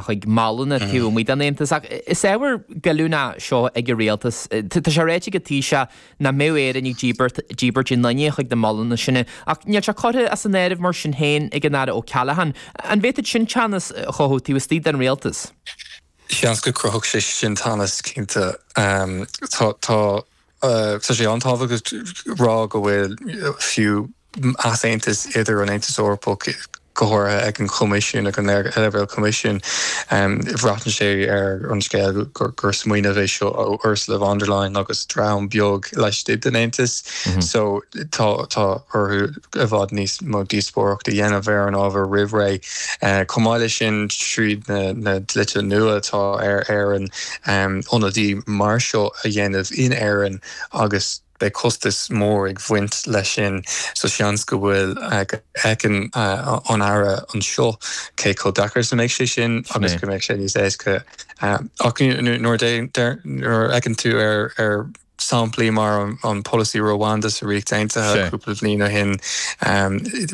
chuig molanna taobh amuigh den Aontas. Ach is ábhar goilliúnach é seo ag an rialtas. Tá sé ráite ag an Taoiseach nach mbeadh Éire ag díbirt daoine chuig na molanna sin. Ach níl sé curtha as an áireamh mar sin féin ag an Aire Ó Ceallacháin. An bhféadfadh sin teannas a chothú taobh istigh den rialtas? Seans go gcruthódh sé sin teannas, cinnte. Tá sé an-tábhachtach a rá go bhfuil fiú easaontas idir an Aontas Eorpach, go háirithe ag an Choimisiún, ag an leibhéal Coimisiúin. Breathnaíonn sé ar an scéal gur smaoineamh é seo ó Ursula von der Leyen agus dream beag laistigh den Aontas so tá orthu i bhfad níos mó díospóireacht a dhéanamh ar an ábhar roimh ré. Chomh maith leis sin, tríd na dlíthe nua atá ar Éirinn ionadaí mar seo a dhéanamh in Éirinn agus. Beidh costas mór ag bhaint leis sin so seans go bhfuil, go fheiceann an Aire anseo cé chomh deacair is a mbeidh sé sin agus go mbeidh sé níos éasca. Ach nuair a fheiceann tú ar shamplaí mar an polasaí Rwanda sa Ríocht Aontaithe cúpla bhliain ó shin,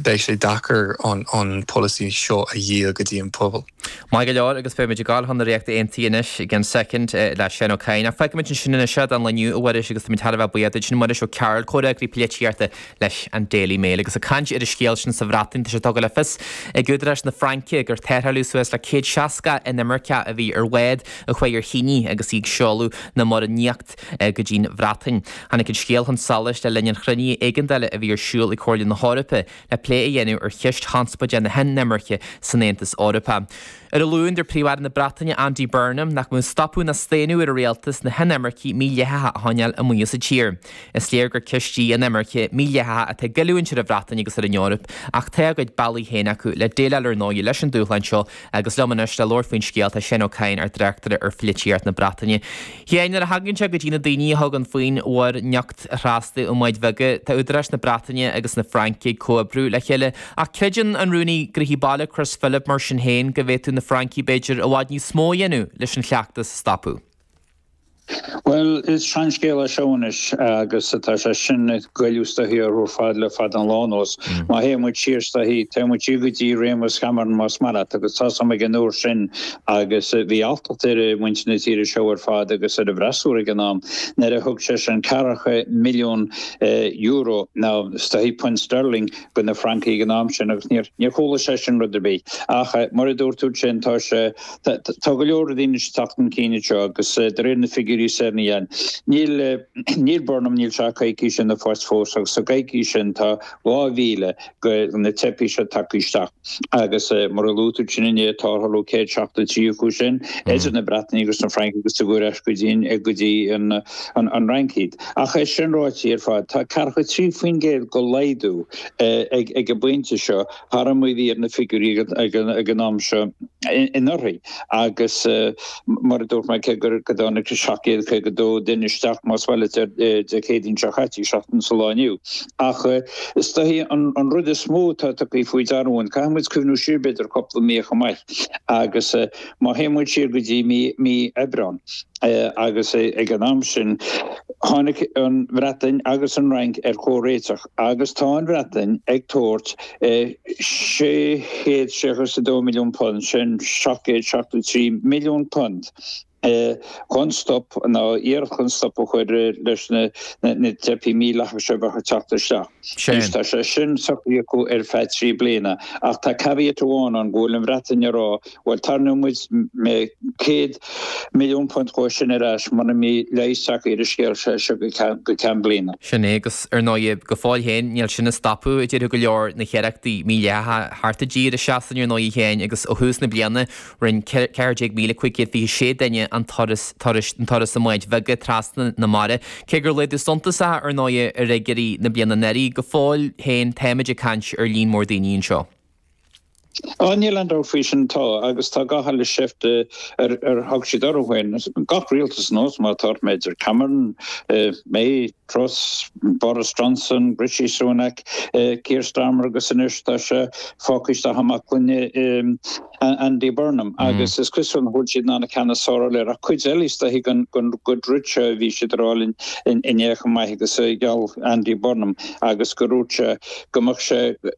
beidh sé deacair an polasaí seo a dhíol go dtí an pobal. Maith go leor, agus beimid ag gabháil chun na Ríochta Aontaithe anois i gceann soicind, le Séan Ó Cadhain. Ach fágfaimid ansin é seo don lá inniu, a Mhuiris, agus táimid thar a bheith buíoch duit. Sin Muiris Ó Cearbhaill, comhfhreagraí polaitíochta leis an Daily Mail, agus ag caint ar an scéal sin sa Bhreatain. Tá sé tugtha le fios ag údaráis na Fraince gur tarrtháladh suas le céad seasca inimirceach a bhí ar bhád a chuaigh ar thine agus í ag seoladh na Mara nIocht go dtí'n Bhreatain. Tháinig an scéal chun solais le linn an chruinnithe éigeandála a bhí ar siúl ag Comhairle na hEorpa le plé a dhéanamh ar cheist chonspóide na hinimirce san Aontas Eorpach. Ar an Luan, dúirt Príomh-Aire na Breataine Andy Burnham nach mbeadh stopadh ná staonadh ar an rialtas na hinimircigh mídhleathacha a choinneáil amuigh as an tír. Is léir gur ceist í an inimirce mhídhleathach atá ag goilliúint ar an Bhreatain agus ar an Eoraip, ach tá a gcuid bealaí féin acu le déileáil ar ndóigh leis an dúshlán seo Agus liom anois le labhairt faoin scéal tá Séan Ó Cadhain, ár dtráchtaire ar pholaitíocht na Breataine. Séan, nuair a thagann sé go dtí na daoine a thugann faoin Mhuir nIocht a thrasnú i mbáid bheaga, tá údaráis na Breataine agus na Fraince ag comhoibriú le chéile. Ach creideann an Rúnaí Gnóthaí Baile, Chris Philp, mar sin féin, go bhféadfadh na Francaigh, b'fhéidir, i bhfad níos mó a dhéanamh leis an chleachtas a stopadh. Bhuel, is seanscéal é seo anois, agus tá sé sin ag goilleadh is dóichí orthu ar fad le fada an lá anuas. Má théann muid siar is dóichí, téann muid siar go dtí réimeas Chameron más maith leat, agus tá's a'm ag an uair sin, agus bhí alltacht ar mhuintir na tíre seo ar fad, agus ar an bhfreasúra ag an am, nuair a thug seisean ceathracha milliún euro, nó is dóichí punt sterling, go na Francaigh ag an am sin, agus níor chuala seisean rud ar bith. Ach, mar a dúirt tú ansin, tá sé. Tá go leor daoine ag teacht chun cinn anseo agus de réir na figiúirí is ar na dhéan. Níl Burnham, níl sé ach coicís ina phost fós agus sa gcoicís sin tá 2,000 de na teifigh seo tagtha isteach agus mar a luaigh tú sin inné tarrtháladh 173 acu sin idir na Breatnaigh agus na Francaigh agus cuireadh ar ais go dtí an Fhrainc iad. Ach é sin ráite ar fad, tá 43% de laghdú ag an bpointe seo. thar mar a bhí na figiúirí ag an am seo anuraidh agus mar a dúirt mé, cé gur tháinig 752 duine isteach, más maith leat, Dé Céadaoin seo chaite, seachtain sa lá inniu. Ach is dóichí an rud is mó atá tugtha faoi deara againn, caithfidh muid cuimhniú siar b'fhéidir cúpla mí chomh maith agus má théann muid siar go dtí mí Aibreán agus ag an am sin tháinig an Bhreatain agus an Fhrainc ar chomhréiteach. Agus tá an Bhreatain ag tabhairt £662 milliún, sin £773 milliún, chun stop, nó iarracht chun stop a chur leis na teifigh mhídhleathacha seo a bheith ag teacht isteach. Anois tá sé sin socraithe acu ar feadh trí bliana. Ach tá caveat amháin ann, go bhfuil an Bhreatain ag rá, Bhuel, tarraingeoidh muide céad milliún punt dhó sin ar ais mura mbí leigheas acu ar an scéal seo go ceann bliana. Sin é, agus ar ndóigh, go fóill féin, níl sin ag stopadh, a déarfadh go leor, na hiarrachtaí mídhleathacha teacht i dtír i Sasana ar ndóigh féin, agus ó thús na bliana, rinne 14,526 duine an turas, an turas i mbáid bheaga trasna na mara, cé gur laghdú suntasach, ar ndóigh, ar fhigiúirí na bliana anuraidh, go fóill féin, táimid ag caint ar líon mór daoine anseo. Á, níl aon dabht faoi sin, tá, agus tá gach uile sheift ar thug siad orthu féin, gach rialtas anuas, mar atá ort, b'fhéidir, Cameron, May, Truss, Boris Johnson, Rishi Sunak, Keir Starmer agus anois tá sé fágtha isteach i mbaclainn Andy Burnham agus is cosúil nach bhfuil siad in ann an ceann is fearr a fháil air ach cuid eile is dóiche go ndúirt sé a bhí siad ag rá linn inné chomh maith agus gheall Andy Burnham agus go ndúirt sé go mbeadh sé